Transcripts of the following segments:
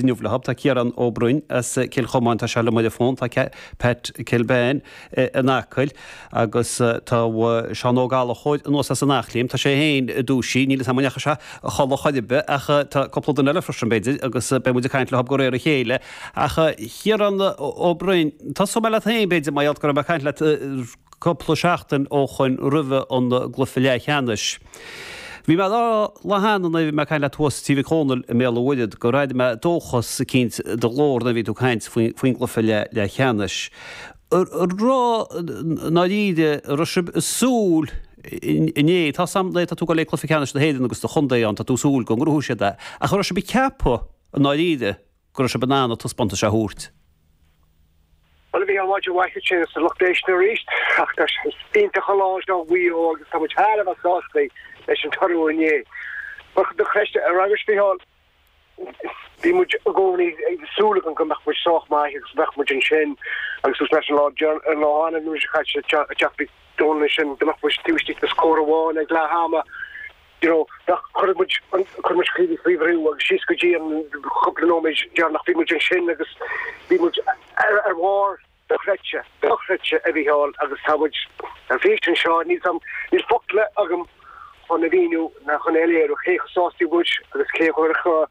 inniu leo tá Ciarán Ó Broin as Cill Chomáin, tá sé liom ar an bhfón, tá Pat Kilbane in Acaill agus tá Seán Ó Gallachóir anuas as an Eachléim. Tá sé féin dúisithe, níl 'fhios a'm an ndeachaigh sé a chodladh chor ar bith ach tá cúpla duine eile freisin b'fhéidir agus beidh muid ag caint leo de réir a chéile. Ach Ciarán Ó Broin, tosóidh mé leat féin b'fhéidir mar gheall go raibh mé ag caint leat cupla seachtain ó shoin roimhe an gcluiche leathcheannais. Bhí mé dá rá le Seán nuair a bhí mé caint leat thuas Tigh Mhic Dhónaill i mBéal a Mhuirthead gur airigh mé dóchas eicínt i do ghlór nuair bhí tú caint faoin gcluiche leathcheannais. Raibh, i ndáiríre, raibh sib ag súil inné, tá 's a'm le, tá tú ag goil ag cluiche ceannais na hÉireann agus do chontae ann, tá tú ag súil go ngnóthóidh siad é, ach raibh sib ag ceapadh i ndáiríre, go raibh sibh in ann an taispeántas seo a thabhairt. Bhuel, bhí an mhaidin mhaith ansin agus an lucht éisteachta arís. Ach is iontach an lá é seo do Mhaigh Eo agus tá muid thar a bheith sásta leis an toradh inné. Mar chuid de choiste an ranga sciatháin, bhí muid i gcónaí ag súil go mbeadh muid sách maith agus go mbeadh muid ansin agus thús leis an lá arna mhí seo caite. Ach bhí dóchas ansin dá mbeadh muid taobh istigh de scór amháin ag leath ama. you know, nach cuirfidh muid an, cuirfidh muid Ciarraí faoi bhrú agus síos go dtí an cúpla nóiméid deireanach bhí muid ansin agus bhí muid ar bharr dochreidte, dochreidte, a Mhícheáil, agus tá muid ar bís anseo, níl 's a'm, níl focla agam chun a mhíniú ná chun a léiriú cé chomh sásta is atá muid agus cé a chuirfeadh,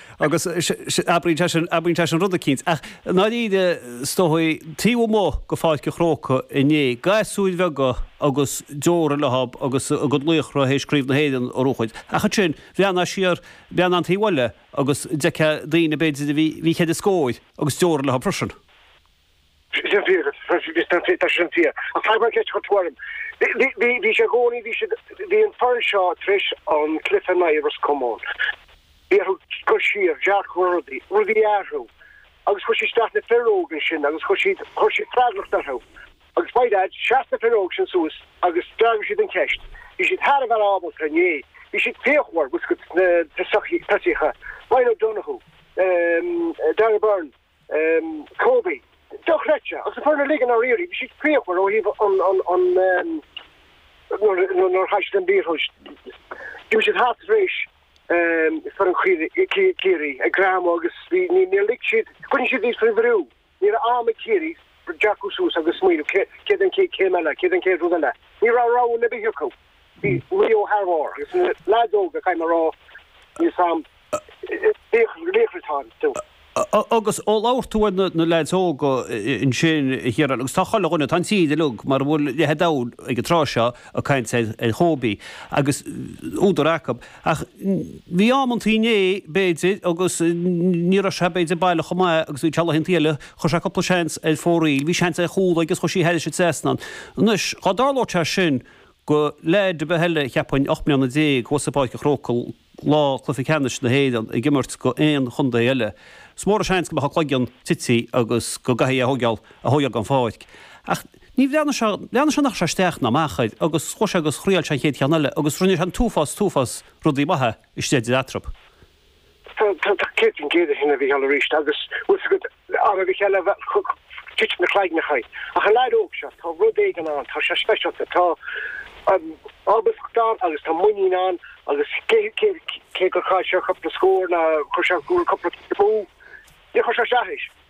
Agus abraíonn sé sin, abraíonn sé sin rud eicínt. Ach i ndáiríre, is dóigh, taobh amuigh de Pháirc an Chrócaigh inné, gasúir bheaga agus deora leo agus a gcuid laochra théis Craobh na hÉireann a ghnóthachtáil. Ach ansin, bhreathnaigh siar, bhreathnaigh an taobh eile agus d'fheicfeá daoine, b'fhéidir, a bhí, bhí ceithre scór agus deora leo freisin. Sin an-fhíor agat. Tá sin an-fhíor. Ach tagann an cheist chugat orm. Bhí sé i gcónaí, bhí siad, bhí an foireann seo tar éis an cluiche in aghaidh Ros Comáin, bhí orthu cur siar, dearcadh ar rudaí, rudaí a athrú agus chuir siad isteach na fir óga ansin agus chuir siad, chuir siad freagracht orthu. Agus by dad, sheas na fir óga sin suas agus d'fhreagair siad an cheist. Bhí siad thar a bheith ábalta inné, bhí siad fíochmhar, bhfuil 's agat, sna tosaithe, Ryan O'Donoghue, Darragh Beirne, Kobe. Dochreidte. Agus an foireann uilig i ndáiríre. Bhí siad fíochmhar ó thaobh an, an, an, nuair, nuair a chaill siad an liathróid. D'imigh siad thart tar éis foireann Chiarraí, Ciarraí ag greamú agus bhí, níor lig siad, choinnigh siad iad faoi bhrú. Ní raibh am ag Ciarraí dearcadh suas agus smaoineamh, cé, céard an chéad chéim eile, céard an chéad rud eile. Ní raibh roghanna ar bith acu. Bhí Rio thar bharr agus na leaids óga, caithfidh mé a rá, bhí sár laochraí ann fiú. Agus ó labhair tú ar na leaids óga ansin, a Chiaráin, agus tá chuile dhuine, tá an tír uilig, mura bhfuil leath an domhain ag an tráth seo, ag caint ar Kobe, agus údar acu. Ach bhí amantaí inné, b'fhéidir, agus ní raibh sé, b'fhéidir, baileach chomh maith agus a bhí sé laethanta eile, chuir sé cúpla seans ar fóraoil, bhí seans ar chúl aige agus chuir sé thar an trasnán. Anois, dá dtarlódh sé sin, Go leaid ar bith eile, cheapfainn, ocht mbliana déag thuas i bPáirc a' Chrócaigh lá cluiche ceannais na hÉireann ag imirt go aon chontae eile, is mór an seans go mbeadh a chloigeann tití agus go gcaithfí é a thóigeál a thóigeál gon pháirc. Ach níor bhreathnaigh sé, bhreathnaigh sé nach gcuir sé isteach ná amach air agus chuaigh sé agus thriail sé an chéad cheann eile agus rinne sé an t-uafás, t-uafás rudaí maithe istigh i dtreo. Tá tú céad faoin gcéad ceart faoi sin, a Mhícheáil, aríst, agus bhfuil 's agat, aon duine eile, bheadh ag titim na cloigneachaí, ach an leaid óg seo, tá rud éigin ann, tá sé speisialta, tá ábaltacht ann agus tá muinín ann agus cé gur chaill sé cúpla scór, nó chuir sé cúpla punt amú, níor chuir sé as a stróc é.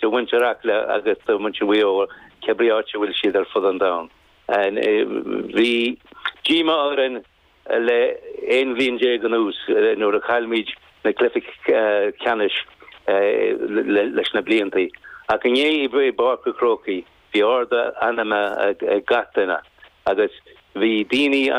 do mhuintir Acla agus do mhuintir Mhaigh Eo, cé ar bith áit a bhfuil siad ar fud an domhain. Bhí díomá orainn le aon bhliain déag anuas nuair a chaill muid na cluichí ceannais leis na blianta, ach inné i bPáirc an Chrócaigh bhí ardú meanman ag gach duine agus bhí daoine.